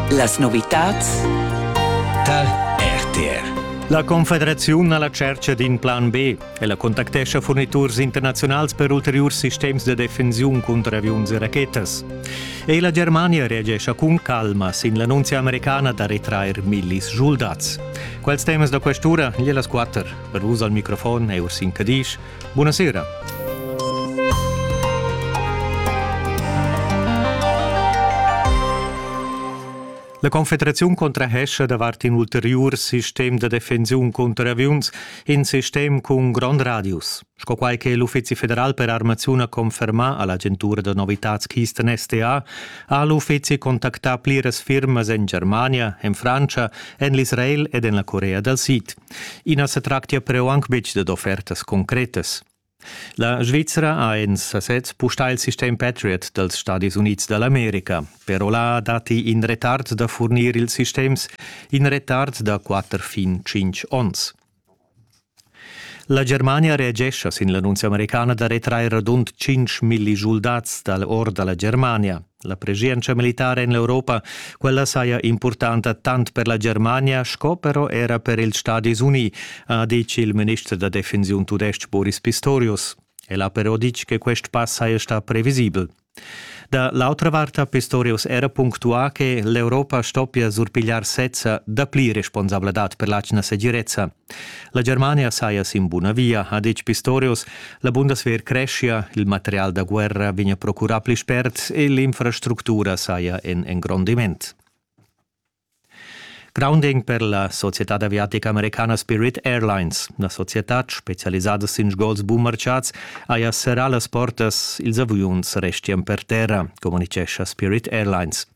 Las novitads tal RTR. La Confederaziun ha la tschercha d'in plan B. Ella contactescha furniturs internaziunals per ulteriurs sistems da defensiun cunter aviuns e rachetas. E la Germania reagescha cun calma sin l'annunzia americana da retrair millis soldats. Quels temas da questura, gliellas quatter. Per vus al microfon è Ursin Cadisch. Buonasera. La Confederaziun contrahescha davart in ulteriur sistem da defensiun cunter aviuns, in sistem cun grond radius, sco quai che l'Uffizi federal per armaziun ha confermà a l'agentura da novitads Kisten STA, ha l'uffizi contactà pliras firmas en Germania, en Frantscha, en l'Israel ed en la Corea dal Sid. I na sa tractia però anc betg dad offertas concretas. La Svizzera ha en sasez pustà il sistem Patriot dals Stadis Unids da l'America. Però là datti in retard da furnir ils sistems, in retard da quatter fin tschintg onns. La Germania reagescha sin l'annunzia americana da retrair radund 5 milli schuldats dal or da la Germania. La preschientscha militara en l'Europa, quella saja impurtanta tant per la Germania sco però era per ils Stadis Uni, ha ditg il minister da defensiun tudestg Boris Pistorius. El ha però ditg che quest pass saja stà previsibel. Da l'autra vart ha Pistorius era punctuà che l'Europa stoppia surpigliar sezza dapli responsabladad per l'atgna segirezza. La Germania saja sin buna via, ha ditg Pistorius. La Bundeswehr creschia, il material da guerra vegnia procurà pli spert e l'infrastructura saja en engrondiment. Grounding per la societad aviatica americana Spirit Airlines. La societad, specialisada sin sgols bummarciads, haja serrà las portas, ils aviuns restian per terra, communitgescha Spirit Airlines.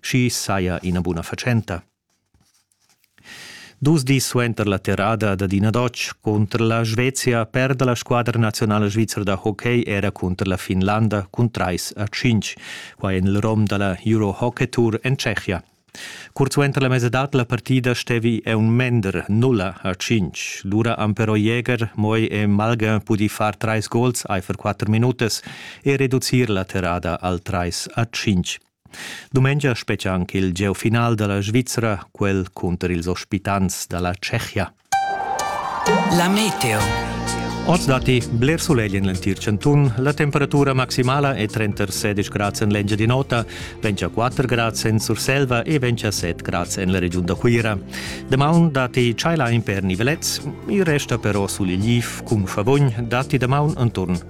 schi saja ina buna fatschenta. Dus dis suenter la terrada dad ina Dotsch cunter la Svezia perda la squadra nazionala svizra da hockey era cunter la Finlanda cun trais a cinc, quai en il rom da la Euro Hockey Tour en Tschechia. Curt suenter la mesadad la partida stevi è un mender nulla a cinc. Lura han però Jäger, Moi e Malga pudì far trais gols aifer quatter minutas e reducir la terrada al trais a cinc. Dumengia spetgia anc il gieu final da la Svizra, quel cunter ils ospitants da la Tschechia. La meteo. Oz datti bler sulegl en l'entir chantun. La temperatura maximala è 36 grads en l'Engiadin'Ota, 24 grads en Surselva e 27 grads en la regiun da Cuira. Damaun datti tschailain per nivelets, il resta però sulegl cun favogn datti damaun enturn